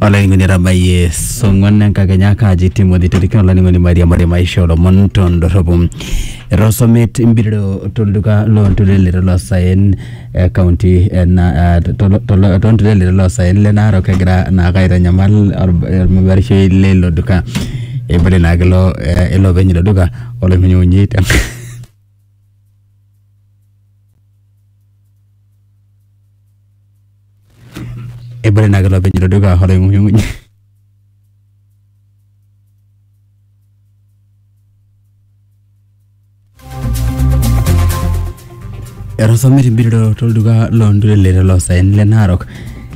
olainining'oni etabayie song'uan enkakenya kaaji timothy torikan olainining'oni mairiamari maisha olomon tondorropu etosomet mpiriro tolduka loonturelete loosaen eh, kaunti ena eh, tolo- tolo- toonturelete loosaen le narok egira naake aitanyamal or- ormabarishoi leilo duka eibalie naake ilo eh, ilo openy ilo duka oloimunyimunyi te ebore naa kelo openy ilo duka oloing'unyung'uny etosomet embirito tolduka loo ntulele toloosaen le Narok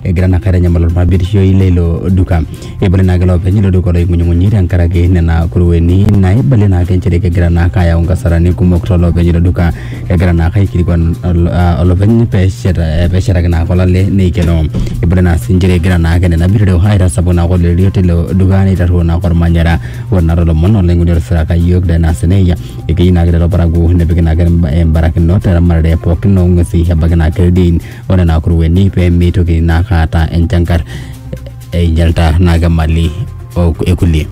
egira naa aitanyamala olparbirishoi leilo duka. Eibale naake loopeny ilo duka oloing'unyung'unyi tenkaraki nena kurueni naibalie naake nchere kegira naake ayau nkasarani kumok tolopeny ilo duka egira naake aikilikuan ol- ah, olopeny peshet eh, peshetaki naake olale neikeno eibale naa sii nchere egira naake nena bitoreo aitasapuk naake oloirerio tilo duka neitarruo naake olmanyara ore naa tolomon olaing'oni otisiraka iyiook Danas Neia ekeyieu naake lelo parakuo nepiki naake imba- imbarakinot teramatare pookin oong'uesi ebaiki naake ildiein onena kurueni pemeitoki naake aata enchankar einyalta naa ke mali o- ekulie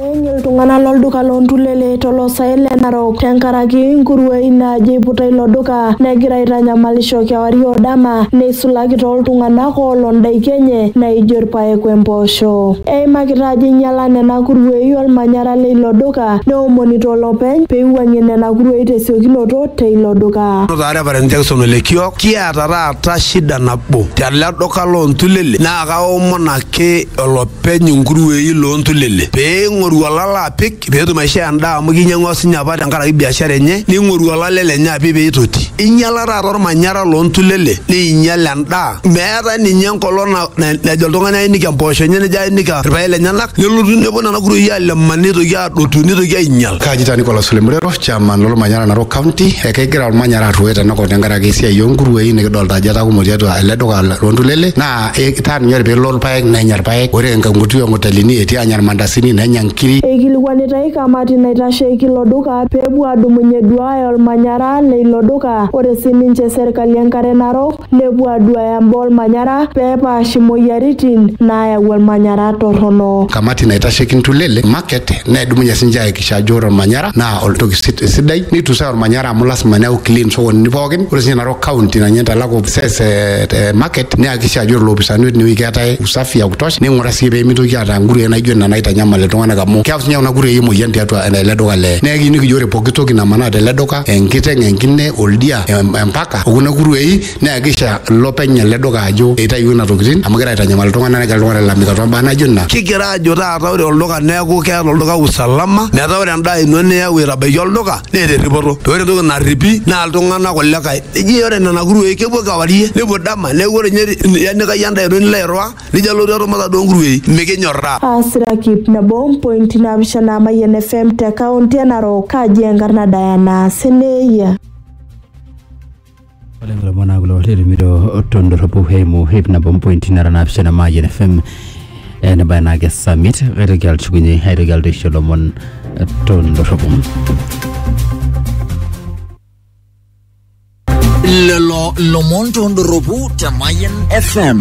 Eeny iltung'anak lolduka loontulele toloosaen le Narok tenkaraki nkuruei naajo eiputa ilo duka negira aitanyamalisho kewarie o dama neisulaki tooltung'anak oolo ndaiki enye naaijo irpaek wempoosho. Eimakita ajo einyala nena kuruei olmanyara leilo duka neomonito olopeny peiwuang'ie nena kuruei tesiokinoto teilo duka. Notaare Reverend Jackson Olekiok Kiata taata shida nabo tele duka loo ntulele naa kaomon ake olopeny inkuruei loo ntulele pee ing'oru olala apik pee etum aishoo endaa amu kinyiang'ua sinye apa tenkaraki biashara enye ning'oru olale lenye apik pee itoti. Inyiala taata ormanyara loo ntulele neinyial endaa. Meetae ninye enkolong na- na- najo oltung'ani ainik empoosho enye nejo ainik irpaek lenyenak nelotu nepuo nena kuruei aleman neitoki adotu nitoki ainyal. Kaji taa Nicholas Lemurero, chairman lolmanyara Narok County, ekegira olmanyara arruoyo tenakop tenkaraki esiai oonkuruei nikidolta ajo etaa kumok tiatua ele duka loontulele naa etaa ninye ore peelo irpaek nenya irpaek, ore enkuti onkotelini etii anya irmandasini nenya nkiri. Eikilikuanitai kamati naitasheiki ilo duka pee epuo aadumunye eduaaya olmanyara le ilo duka. Ore sii ninche serkali enkare Narok, nepuo aduaya mbaa olmanyara pee epaash imoyiaritin naayau olmanyara torrono. Kamati naitasheki ntulele, market, nedumunye sininche aakikisha ajo ore olmanyara naa oltoki sidai neitusai olmanyara amu lasima neeku clean sokonini pookin. Ore sininye Narok County naa ninye naitalaku ofises e market neakikisha ajo ore ilopisaani otii inewueji keetae usafi ya kutosha neing'uraa sii pee meitoki aata nkuruei naijo nena naitanyamal iltung'anak amu keyau sininye kuna kuruei emoyian tiatua ele duka le. Neeku ekiyieu nikijo ore pooki toki namanaa tele duka, enkiteng, enkine, oldia, empaka. okuna kuruei naa kisha ilopeny ele duka ajo eitayuo ina tokitin amu kegira aitanyamal iltung'anak negira iltung'anak ailalamika tombaa naijo nena kigira ajo taata ore olduka neeku keeta olduka usalama metaa ore endaa ino niyau aitabaiki olduka neeta erripoto paa ore entoki narripi naa iltung'anak kulikae eji ore nena kuruei kepuo kewarie nepuo dama neeku ore inye ianikai endaa ino nilo airriwaa nijo alotu atum inaduo kuruei mikinyorraa. Aasiraki nabo oo mpointi naapishana Mayian FM te kaunti e Narok. Kaji enkarna Diana Seneyia. Ore lelo omon naa kulo otetumito tondorropu eimu hip nabo mpointi nara naapishana Mayian FM eh, nebaya naa ake summit kaitoki atushukunye aitoki alotu aisho lomon eh, tondorropu lelo lomon tondorropu te Mayan FM.